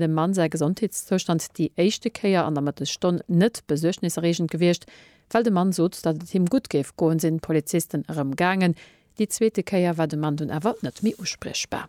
dem Mann säi Gesondheetszoustand déi éischte Kéier an der Mëttesstonn net besuergniserreegend gewiescht. Well de Mann sot, datt et him gutt géif goen, sinn d'Polizisten erëm gaangen. Déi zweete Kéier war de Mann dunn awer net méi uspriechbar.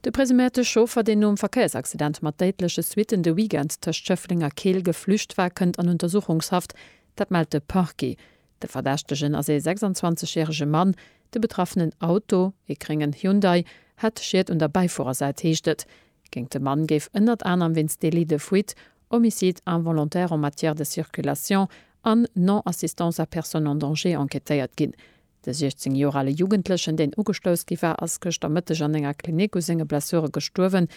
De presuméierte Chauffer, deen nom Verkéiersaccident mat déidleche Suitten de Weekend tëscht Schëffleng a Keel geflücht war, kënnt an Untersuchungshaft. Dat mellt de Parquet. De Verdächtegen ass ee 26 järege Mann. De betraffenen Auto, ee gréngen Hyundai, hätt Schied un der Bäifuerersäit, heescht et. Géint de Mann géif ënnert anerem wéinst Délit de fuite, Homicide involontaire en matière de circulation an Non-assistance à personne en danger enquêtéiert ginn. De 16 Joer ale Jugendlechen, deen ugestouss gi war, ass gëschter Mëtteg an enger Klinik u senge Blessure gestuerwen.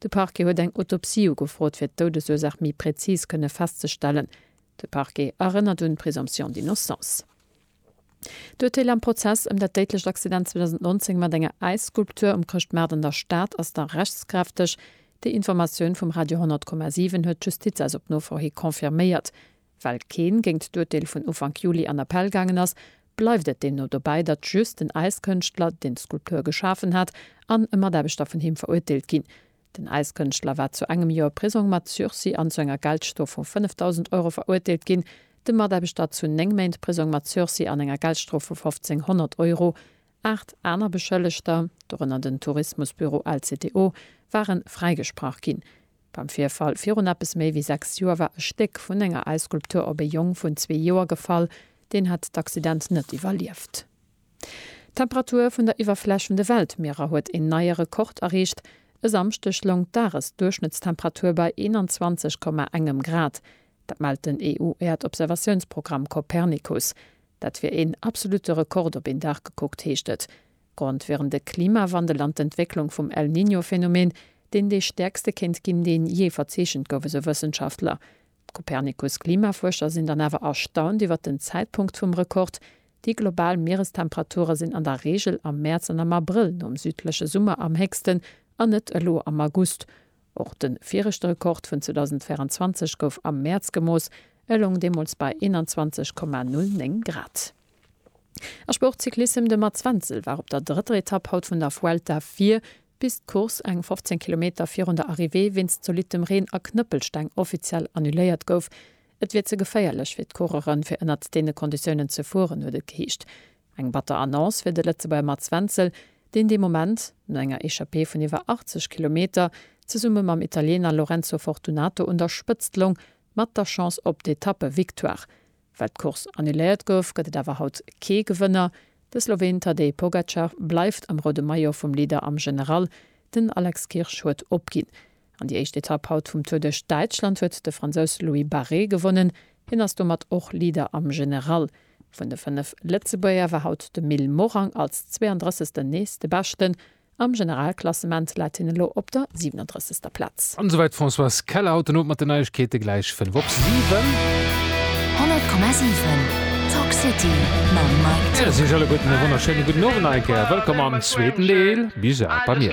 De Parquet huet eng Autopsie ugefrot, fir d'Doudesursaach méi präzis kënne festzestellen. De Parquet erënnert un d'Présomption d'innocence. D'Urteel am Prozess ëm dat déidlecht Accident 2019 mat enger Äisskulptur um Chrëschtmaart an der Stad ass nach rechtskräfteg. Déi Informatioun vum Radio 100,7 huet d'Justiz eis op Nofro hi confirméiert. Well keen géint d'Urteel vun Ufank Juli an Appell gaangen ass, bleift et deemno dobäi, datt just den Äiskënschtler, deen d'Skulptur geschafen hat, an e Mataarbechter vun him verurteelt ginn. Den Äiskënschtler war zu engem Joer Prisong mat Sursis an zu enger Geldstrof vu 5.000 Euro verurteelt ginn, de Mataarbechter zu néng Méint Prisong mat Sursis an enger Geldstrof vu 1.500 Euro. Aacht aner Beschëllegter, dorënner den Tourismusbüro LCTO, ware fräigesprach ginn. Beim Virfall virun eppes méi wéi sechs Joer war e Stéck vun enger Äisskulptur op e Jong vun zwee Joer gefall, deen hat d'Accident net iwwerlieft. D'Temperatur vun der Iwwerfläch vun de Weltmierer huet een neie Rekord erreecht. E Samschdeg loung d'Dagesduerchschnëttstemperatur bei 21,1 Grad. Dat mellt den EU-Äerdobservatiounsprogramm Copernicus. Dat wier een absolutte Rekord op een Dag gekuckt, heescht et. Grond wieren de Klimawandel an d'Entwécklung vum El Niño-Phänomen, deen dee stäerkste kéint ginn, deen jee verzeechent gouf, esou Wëssenschaftler. D'Copernicus-Klimafuerscher sinn dann awer erstaunt iwwert den Zäitpunkt vum Rekord, Déi global Mierestemperature sinn an der Reegel am Mäerz an am Abrëll nom südleche Summer am héchsten, an net elo am August. Och de viregte Rekord vun 2024 gouf am Mäerz gemooss, e loung deemools bei 21,09 Grad. A Sportcyclissem, De Mats Wenzel war op der drëtter Etapp haut vun der Vuelta vir, Bis d'Course eng 15 Kilometer virun der Arrivée wéinst zolittem Reen a Knëppelsteng offiziell annuléiert gouf. Et wier ze geféierlech fir d'Coureuren, fir ënnert deene Konditiounen ze fueren, huet et geheescht. Eng batter Annonce fir de Lëtzebuerger Mats Wenzel, deen dee Moment, no enger Echappée vun iwwer 80 Kilometer, zesumme mam Italiener Lorenzo Fortunato un der Spëtzt loung, mat der Chance op d'Etappe-Victoire. Well d'Course annuléiert gouf, gëtt et awer haut kee Gewënner. De Sloween Tadej Pogacar bleift am roude Maillot vum Leader am General. Den Alex Kirsch huet opginn. An déi éischt Etapp haut vum Tour duerch Däitschland huet de Fransous Louis Barret gewonnen. Hien ass domat och Leader am General. Vun de fënnef Lëtzebuerger war haut de Mil Morang als 32. nees de Beschten. Am Generalklassement läit hien elo op der 37. Plaz. An esouwäit d'Françoise Keller. Haut den Owend mat den Neiegkeete gläich 5 op 7. 100,7 Talk City mam Mike T. Ech siech alleguerten e wonnerschéine gudden Owend nach eng Kéier. Wëllkomm am zweeten Deel. Bis bal bei mir.